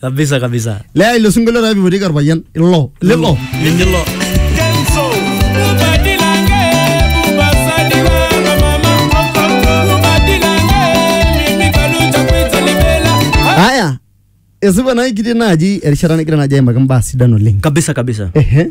kabisa kabisa Lea ilo sinkolio taa pipotieki orpayian ilo lilo linilo aya esipa naa kitii naaji erishata nigira naaji aimaki imbaa sidan oleng kabisa kabisa ehe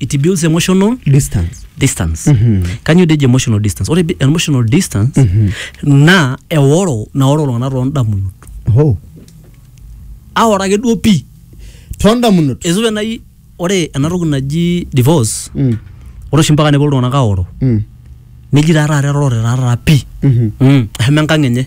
it builds emotional distance distance Mhm. kanyioo deji emotional distance ore bi- emotional distance Mhm. naa eoro naoro iltung'anak toondamunot oh aoro ake duo pii toondamunot esupe nai ore ena toki naji divorce Mm, ore oshi mpaka nepuo iltung'anak aoro mm, neji taa taata erorore taa taata pii mhm. mm. eshomo enkang enye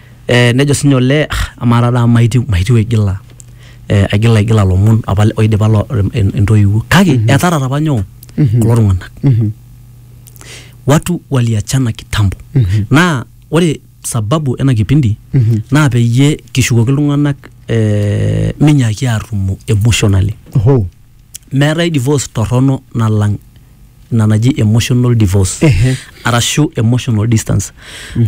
Eh, nejo sinye olee "Ah, amaa taata amu maitiu maitiu aigila eh, aigila aigila lomon apa le- oidipa lo- en- entoiwuo kake etarata apa nyoo kulo tung'anak Mhm. watu waliachana kitambo Mhm. naa ore sababu ena kipindi Mhm. naa peyie kishukoki iltung'anak eh, minyaaki atumo emotionally Oho. meetae divorce torrono nalang ina naji emotional divorce Ehe. arashu emotional distance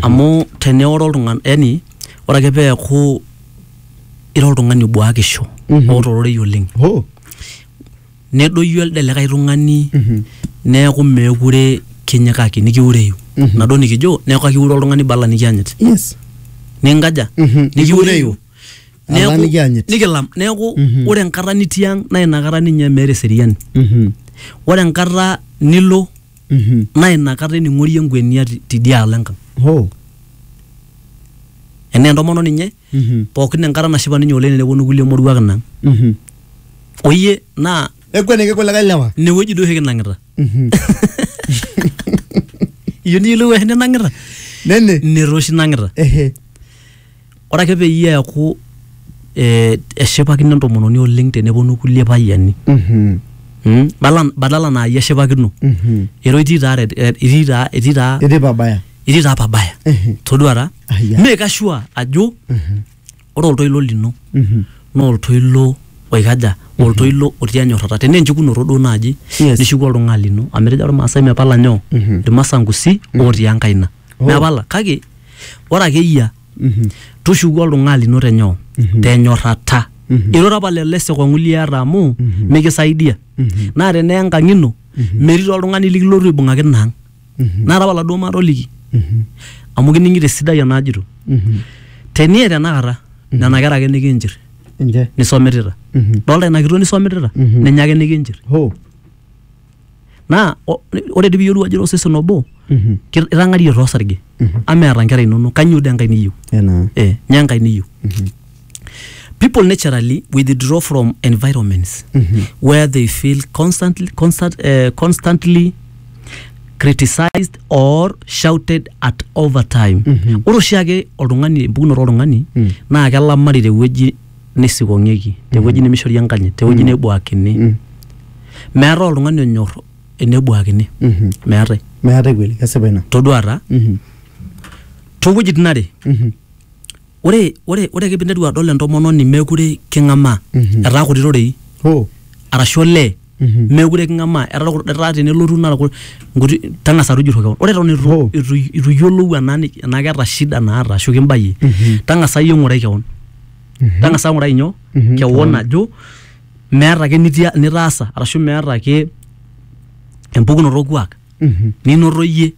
amu teneoro oltung'ani yani ore ake peeku ira oltung'ani obuakisho Mhm. oota ororei oleng Oh. nedoyio elde likae tung'ani Mhm. neeku meekure kinyikaki nikiureyu Mhm. nado nikijo neeku akiure oltung'ani bala nikianyit Yes. ninkaja Mhm. nikiureyu Neeku- Alang nikianyit. nikilam neeku Mhm. ore enkata nitii ang naa inakata ninye meeta eseriani Mhm. ore enkata nilo Mhm. naa inakata ening'orie enkwenia ti- tidialo enkang Ho. enaa entomono ninye Mhm. pookin enkata nashipa ninye oleng teneponu kulie moruak inang Mhm. oyie naa Ekweniki kulikae lewa. inewueji duo oshi kinang'ita Mhm. iyieu niyiolou oshi ninang'ita Nene. netoshi nang'ita Ehe. Ore ake peyie eaku eh, eshipakino entomononi oleng teneponu kulie payiani Mhm. mm? Bala- badala naa iyie eshipakino Mhm. ero itii taa red- eh, itii taa itii taa Etii pabaya. itii taa pabaya Ehe. todua taa Ah, yeah. make sure ajo ore oltoilo lino Mhm. naa oltoilo oikaja oltoilo otii enyorrata tenaa enchukunoto duo naaji Yes. nishuku oltung'ani lino amu etejo irmaasai mepala nyoo Mhm. irmasankusi otii enkaina Oh. mepala kake ore ake eyia Mhm. tushuku oltung'ani lino tenyoo Mhm. tenyorrata Mhm. irura apa lelo esikong'u liata amu Mhm. mikisaidia Mhm. naa tenaa enkang ino Mhm. metii taa oltung'ani likilotu aibung'aki ina ang Mhm. naata apa laduo matoliki Mhm. amu kining'ito esidai enajito Mhm. tenie tenakata Mhm. nena kera ake nikinchir Nche. nisomitita Mhm. dolta ina kitok nisomitita Mhm. ninye ake nikinchir Ho. naa o- ore dii piyiolou ajo ira osesen obo Mhm. ki- itang'arie too sarge Mhm. ama eeta nkera inonok kanyoo dee enkae niyieu Enaa. eh, nyoo enkae niyieu Mhm. people naturally withdraw from environments Mhm. where they feel constantly, constant, uh, constantly criticized or shouted at over time Mhm. ore oshiake oltung'ani empukunoto oltung'ani Mm. naa kelamari tewueji neisikong'ieki te wueji nemeishori enkanyit te wueji nebuakini meetae oltung'ani onyor enebuakini meetae meetae kweli kesipa ina toduata toowuejitin are ore ore ore ake piinteru adol entomononi mekure king'amaa etaa kuti rorei hoo arashu olee meekure king'amaa etaa kul- etaa tenelotu naa kul- nkuti tang'asa tujurro kewon ore eton itu Oh. itu itu iyiolou enaa ni- enaa keeta shida naata ashu kimbayie tang'asa iyie ng'urai kewon tang'asa ng'urai nyoo Mhm, kewon ajo meeta ake nitia- nitaasa arashu meeta ake empukunoto orkuak Mhm. ninoto iyie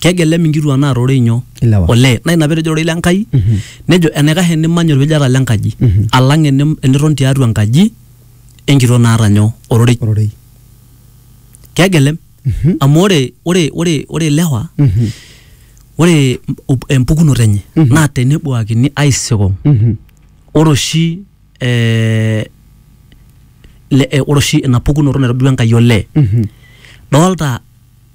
kegelem inkituak naa rorei nyoo Ilewa. olee naa ina petejo rorei le Nkai nejo enaikash enimany olpejata le nkaji alang enim- eniton tiatua enkaji enkitok naata nyoo ororei ororei kegelem amu ore ore ore ore ilewa Mhm. ore mp- empukunoto enye naa tenebuakini aisikong Mhm. ore oshi eh, le- eh, ore oshi ina pukunoto naitobirua Enkai olee Mhm. doolta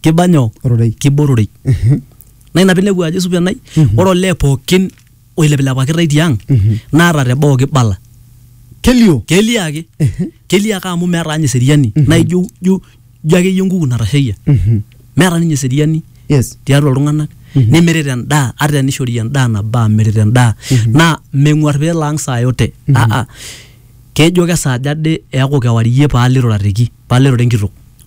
kiba nyoo Ororei. kiba ororei naa ina pinepu ajo supa enai ore olee pookin oilepilepakitae tiang naata teboo kibala kelio kelio ake kelio ake amu meeta ninye eseriani naa ijo ijo ijo akeyie enkuku natasheyie meeta ninye eseriani yes tiatua iltung'anak nemirita endaa ata enishori endaa nabaa mirita endaa naa meng'uar peelo ang saa yote aa kejo kesaaja ade eeku kewarie paalo irurareki paalo irura enkitok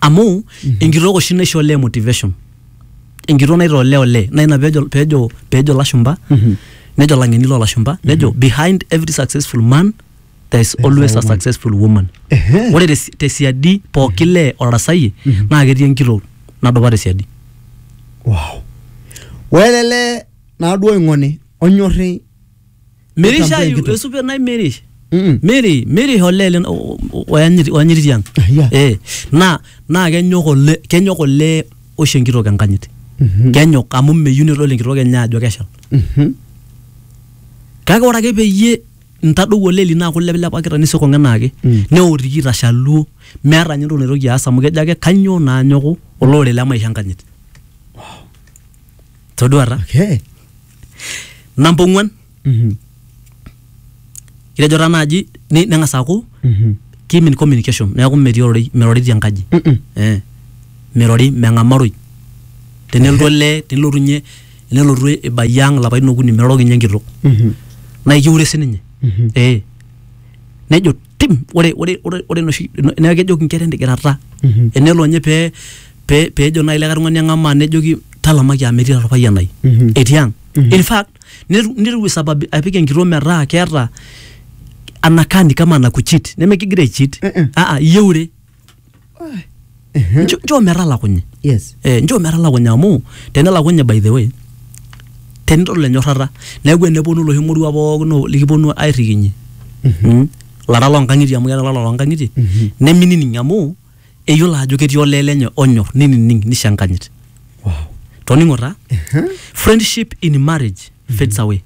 amu enkitok oshi naisho olee motivation enkitok naitaa olee olee naa ina peejo peejo peejo ilashumba nejo ilang'eni loolashumba nejo behind every successful man there is always a successful woman Ehe. ore te- tesiadi pooki lee otarasayie naa ketii enkitok nadupa tesiadi wow. welele naaduo oing'oni onyorri Mirish Nitambe ayu enkitok. esupe nai mirish. Mm. Miri mirish olee lin- o- o- oyanyiti oyanyiti tiang. Ah, yeah. Eh na na kenyok ole kenyok ole oshi enkitok enkanyit. Mhm. Kenyok amu meyieu nedol enkitok enye ajo keshal. Mhm. Kake ore ake peyie ntadou ole lino aaku lepilepakita nisikong enaake Mm. neotiki itashaluo meeta ninye entoki naitoki aas amu kejo ake kanyoo naa anyoku olorere le maisha enkanyit. Toduata? Okay. namba ong'uan Mhm. kitejo taa naaji ni- neng'as aaku Mhm. kimin communication neeku metii ororei mirori tienkaji Mm-mm. eh, mirori meng'amaroi tenelotu olee tenelotu nye tenelotu ibayie ang lapaitin okuni miroroki nye enkitok Mhm. naa ikiure sininye Mhm. eh, nejo tim ore ore ore ore enoshi neeku kejoki inkera entigirata Mhm. enelo ninye pee pee peejo naaji likae tung'ani eng'amaa nejoki talamaki amu etii taata orpayian lai Mhm. etii ang Mhm. in fact netu- netiu isababi apik enkitok metaa keeta anakani kama anakuchit nemekigira aichit Eh, eh. aa iyeure Njo- njoo metalakunye yes eh, njoo metalakunye amu tenelakunye by the way tenidol enyorrata neeku eneponu loshi moruak pookin o- likiponu airrikinyie Mm. lara loonkang'itie amu keeta lala loonkang'itie neminining amu eyiolo ajo ketii olee lenye onyor ninining nisho enkanyit wow toning'o taa friendship in marriage fades away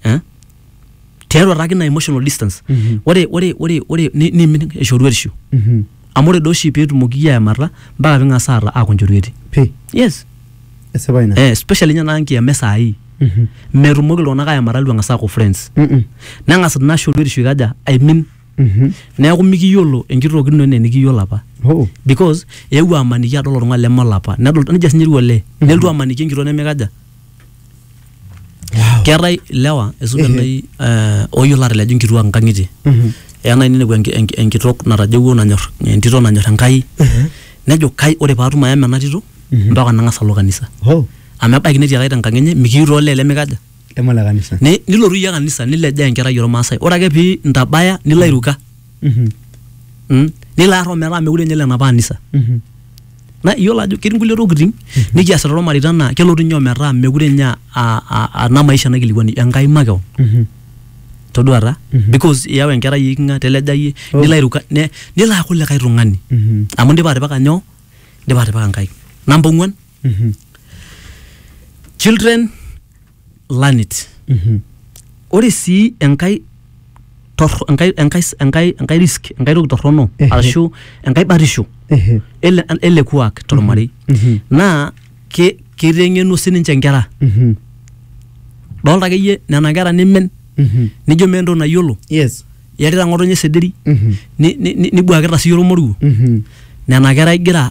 eh? tiatua taake ina emotional distance Mhm. ore ore ore ore ni- niimin eshoruetisho Mhm. amu ore doi oshi peetumoki iyie aemata mpaka ping'as aata aaku nchorueti Pi. yes Esipa ina. eh, especially ninye naa nkiyama esaai Mhm. metumoki iltung'anak aemata litu eng'as aaku friends Mm-mm. neng'as ina shoruetisho ikaja aimin Mhm. neeku mikiyiolo enkitoki ino enaa enikiyiolo apa Oh. because eewuo amaniki adol oltung'ani leme olapa nedol nejia sinye etiu olee nelotu amaniki enkitok nemikaja keetae ilewa esuda Ehe. nai eh, oyiolo atalej inkituak nkang'itie Mhm. eya nai ninepu enki- enki- enkitok natajeuo nanyor entito nanyor enkai Ehe. nejo kai ore paatum ayama ena tito Mhm. mpaka nang'as alo kanisa Oh, amu ebaiki netii ake tenkang enye mikiyieu toolee lemikaja lema le kanisa. Ni- nilotu iyie kanisa nilejaa enkerai ormaasai ore ake pii intabaya nilo airuka Mhm. Mm. nelo arro metaa mekure ninye lenapa anisa Mhm. na iyiolo ajo ketii nkulie tokitin nikiasita tolmareita naa kelotu ninye ometaa mekure ninye a- a- a- ana maisha naikilikuani enkai makeon Mhm. toduata Mhm. because iyau enkerai ikinga telejayie Oh. nilo airuka ne- nilo aaku likae tung'ani Mhm. amu indipa atipika nyoo indipa atipika nkaik namba ong'uan children learn it ore sii enkae torro- enkae enkae enkae enkae risk enkae toki torrono Ehe. arashu enkae batisho Ehe. ele ele kuak tormarei Mhm. naa ke- kiteng'enu sininche nkera Mhm. dolta akeyie nena kera nimen Mhm. nijo meeta entoki nayiolo yes iyarita ng'otonye sederi Mhm. ni- ni- ni- nibuakita siyie ormoruo Mhm. nena kera igira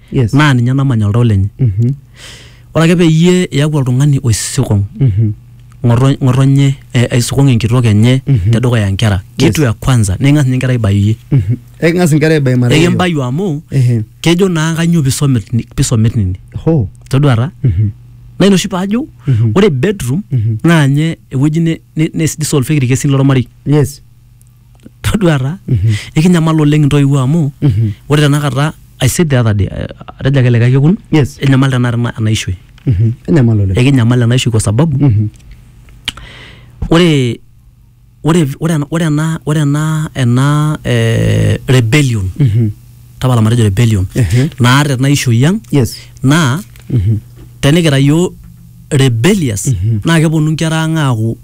Yes. naa ninye namanya oltau lenye Mhm. ore ake peyie iyaku oltung'ani oisikong Mhm. ng'oto- ng'otonye eh, aisikong enkitok enye Mhm. tedukuya nkera kitu ya kwanza niking'as ninye nkera aibayie Mhm. Eking'as inkera aibai mara hiyo. ekimbayu amu Ehe. kejo naa kanyoo pisomit ni- pisomit nini Ho. toduata Mhm. naa ina oshi paajo Mhm. ore bedroom Mhm. naa nye ewueji ne- ne- nesidissolveki irkesin lormarei Yes. todua taa Mhm. ekinyamal oleng intoiwuo amu Mhm. ore tenakata I said the other day eh, atejo ake likae kekun Yes. enyamal tenakata ena- ena ishoi Mhm. Enyamal oleng. ekinyamal ena ishoi kwa sababu Mhm. ore ore ore ena- ore ena ore ena ena eh, rebellion Mhm. tapala matejo rebellion Ehe. naata ena ishoi ang Yes. naa Mhm. tenikira yioo rebellious Mhm. naa keponu nkera ang aaku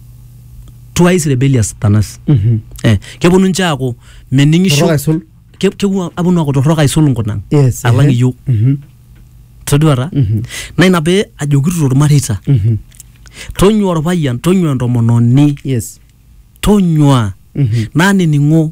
twice rebellious than us Mhm. eh, keponu nche aaku mening'isho Torrok aisul. Ke- kepuo aponu aaku torrok aisul nkunang Yes, alang ehe. iyiok Mhm. toduata Mhm. naa ina pee ajokito tormareita Mhm. tonyua orpayian tonyua entomononi Yes. tonyua Mhm. naa nining'o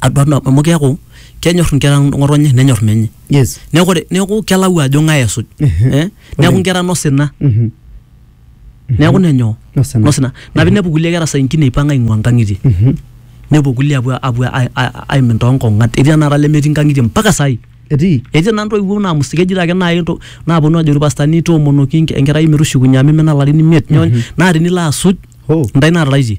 aduat nabo amu keeku kenyor inkera ng'otonye nenyor menye yes neeku ore neeku kelau ajo ng'ae esuj Mhm. eh? neeku inkera nosina Mhm. neeku nenyoo Nosina. nosina na pinepu kulie kera saa ingine ipang aing'ua nkang'itie Mhm. nepuo kulie apuo apuo ai- ai- aimin toonkong'at etii tenakata lemetii nkang'itie mpaka saai etii etii naa ntoiwuo naamus keji ake naai nto- naaponu ajo irpastani toomonoki enke- enkerai metushukunye amu imina ilarin imiet nyoo naa tinilo asuj Hoo. ntae naataraitie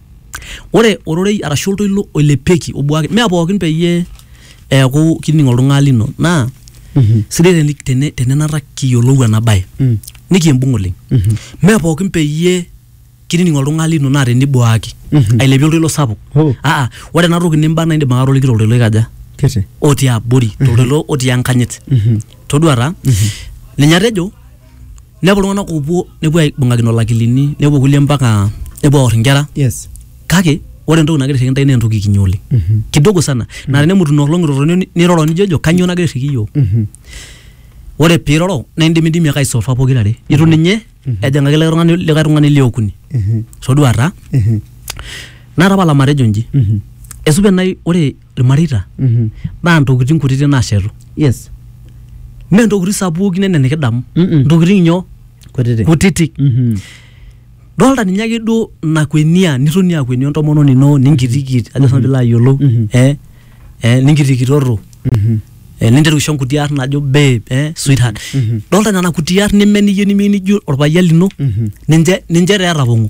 Ore ororei arashu oltoilo oilepieki obuaki mee pookin peyie eeku kining oltung'ani lino naa sidai teni tenenata kiyiolou ena bae Mm. nikiimbung oleng. Mee pookin peyie kinining oltung'ani lino naa tenibuaki Mhm. ailepie oltoilo sapuk. Oh. Aa ore ena toki nimba naa indim ake atoliki toltoilo oikaja? Kiti. otii abori toltoilo otii enkanyit. Mhm. Todua taa ninye atejo nepuo iltung'anak oopuo nepuo aibung'akino lakilini nepuo kulie mpaka nepuo aor inkera yes kake ore entoki nagira airriki intae naa entoki kinyi oleng Mhm. kidogo sana naa tenemutu ina olong iroroni ni- niroro nijojo kanyoo nagira airriki iyiook Mhm. ore piiroro naa indimidimi ake aisolfa pokirare itu ninye ejing'aki likae tung'ani likae tung'ani liokuni Mhm. toduata Mhm. natapala matejo inji Mhm. esupe nai ore ilmareita Mhm. naa ntokitin kutitik naashetu yes mee ntokitin sapukin enaa enikidamu Mm-mm. ntokitin nyoo kutitik kutitik Mhm. dolta ninye ake duo nakwenia nitoni akwenio entomononi ino ninkitikit ajo sinanu piilo ayiolou Mhm. eh, eh, ninkitikitoto Mhm. eh, ninteru aisho nkuti arn najo babe eh, sweetheart Mhm. dolta nena kuti arn neme niyieu nimiyieu nijo orpayian lino Mhm. ninche ninche taa etapong'o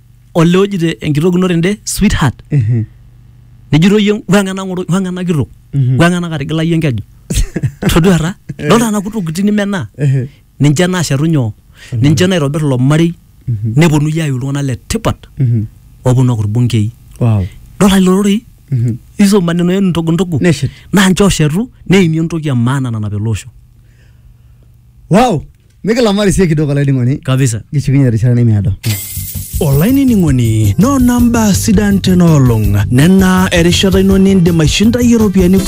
olee ojito enkitok ino tende sweetheart Mhm. nejito iyie weng'a ena ng'oro weng'a ena kitok Mhm. weng'a ena katigila iyie enkeju toduata dolta nena kutukuti nimenaa Ehe. ninche naashetu nyoo ninche naitobir ilo marei Mhm. neponu iyie ayiu iltung'anak le tipat Mhm. oponu aku irbungei Wow. dolta lelo rorei Mhm. hizo maneno yenu ndogo ndogo Neshet. naa nche oshetu neimie entoki e maana nanap ele osho Wow. mikilamari sie kidogo olainining'oni kabisa kishukunye erishata nemeado olainining'oni noona mbaa sidan tena olong nena erishata ino nindim aishindayi iropiyiani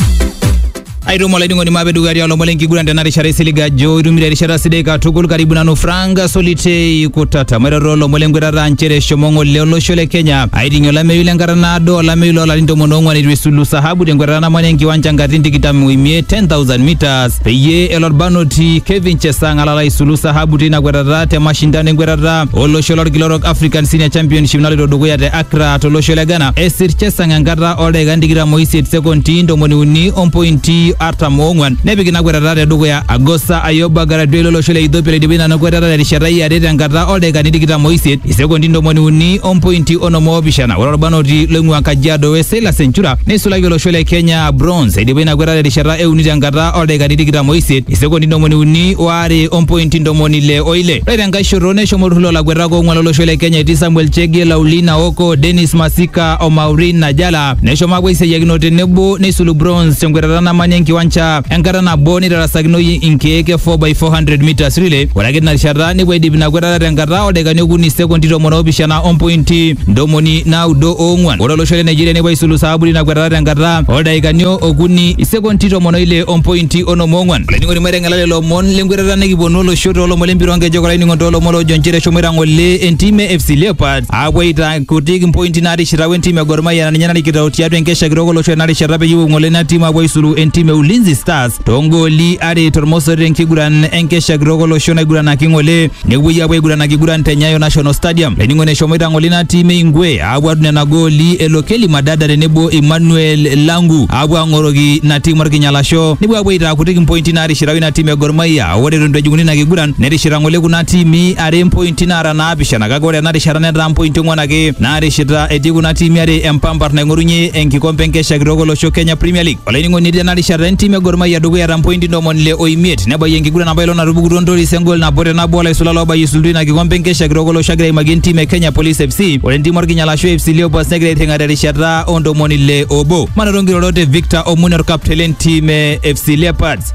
aitumo olainining'oni maape dukuya tialo lomon lenkiguran tena rishata isiliga ajo itumito erishata sidai katukul karibu nanu frank solitei kutata mairoro lomon lenkwetata nchere eshomo ng'ole olosho le kenya aiting'ie olameyu lenkata naado olameyu loolarin tomon oong'wan eitu esulu sahabu tenkwetata namanya enkiwanja nkatitin tikitam oimiet 10000 meters peyie elo orbanoti Kevin Chesang alala aisulu sahabu teina kwetata te mashindano enkwetata olosho lorkila orok African Senior Championship naloito dukuya te Accra tolosho le Ghana. Esir Chesang enkata oldaikan tikitam oisiet sekondi ntomoni uni ompointi artam oong'wan nepik ina kwetata te dukuya. Agosa Ayoba Garadue lolosho le Ethiopia loidipa ina kwetata terishata e are tenkata oldaikani tikitam oisiet isekondi ntomoni uni ompointi onom oopishana. Ore orbanoti loing'ua Kajiado West Silas Enchura neisulaki olosho le Kenya a bronze eidipa ina kwetata terishata e uni tenkata oldaikani tikitam oisiet isekondi ntomoni uni oare ompointi ntomoni ile oile ore tenkae shoto neshomo olturrur lolakuetak oong'uan lolosho le kenya etii samuel chege laulina oko denis masika o maureen najala neshomo apuo aisiayiakino tenebo neisulu bronze tenkwetata namanya enkiwanja enkata nabo neitarasakinoyu inkeek e 4x400 meters relay ore ake tina rishata nepuo aidip ina kwetata tenkata oldaikani okuni isekondi tomon oopishana ompointi ntomoni naudo oong'uan ore olosho le Nigeria nepuo aisulu saaburi ina kwetata tenkata oldaikani okuni isekonti tomon oile ompointi onom oong'uan olainining'oni maiteng'ela lelo omon lenkwetata nikiponu olosho toolomon lempira onkejek olainining'oni toolomon loojo nchere eshomoita ng'ole entim e FC Leopards aapuo aitaa kutik impointi naatishita wentim e Gor Mahia naa ninye narikito tiatua enkesha kitok olosho ena rishata peyie epuo ng'ole ina tim aapuo aisulu entim e Ulinzi Stars toongooli are tormosori tenkiguran enkesha kitok olosho naiguranaki ng'ole nepuoi apuo aiguran akiguran te Nyayo National Stadium. Laining'oni eshomoita ng'ole ina tim e Ingwe apuo adung nena gooli e Lokeli Madada tenebo Emmanuel Langu apuo ang'oroki ina tim orkinyalasho nepuo apuo aitaa kutik impointi naatishirau ina tim e Gor Mahia. Ore eton eitu ejing'uni ina kiguran netishira ng'ole kuna tiimi are impointi naara naapishana kake ore ena rishata netaa mpointi ong'wan ake naatishita etii kuna tiimi are empampar naing'orunye enkikompe enkesha kitok olosho Kenya Premier League. Olainining'oni tena rishata entim e Gor Mahia dukuya ta mpointi ntomoni ile o imiet nebayie enkiguran apa ilo natupukutuo Ntoris engol nabo te nabo olaisula loobayie isultu ina kikompe enkesha kitok olosho agira aimakie entim e Kenya Police FC. Ore entim Orkinyala ashu AFC Leopards negira airring'a terishata o ntomoni ile obo. Manoto nkirorot e Victor Omune orkapteni lentim e FC Leopards.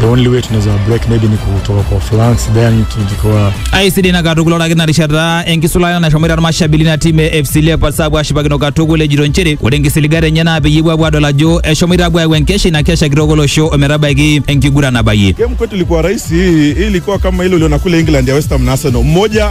the only way tunaweza break maybe ni kutoka kwa flanks then tukikuwa aisidai na katukul ore ake ina rishata enkisulayo nashomoita irmashabili ina tim e fc leopards aapuo ashipakino katukul ejito nchere ore enkisiligat enye naa peyie epuo apuo adol ajo eshomoita apuo ayau enkesha ina kesha kitok olosho ometabaiki enkiguran nabayie Game kwetu ilikuwa rahisi, hii hii ilikuwa kama ile uliona kule England ya West Ham na Arsenal, mmoja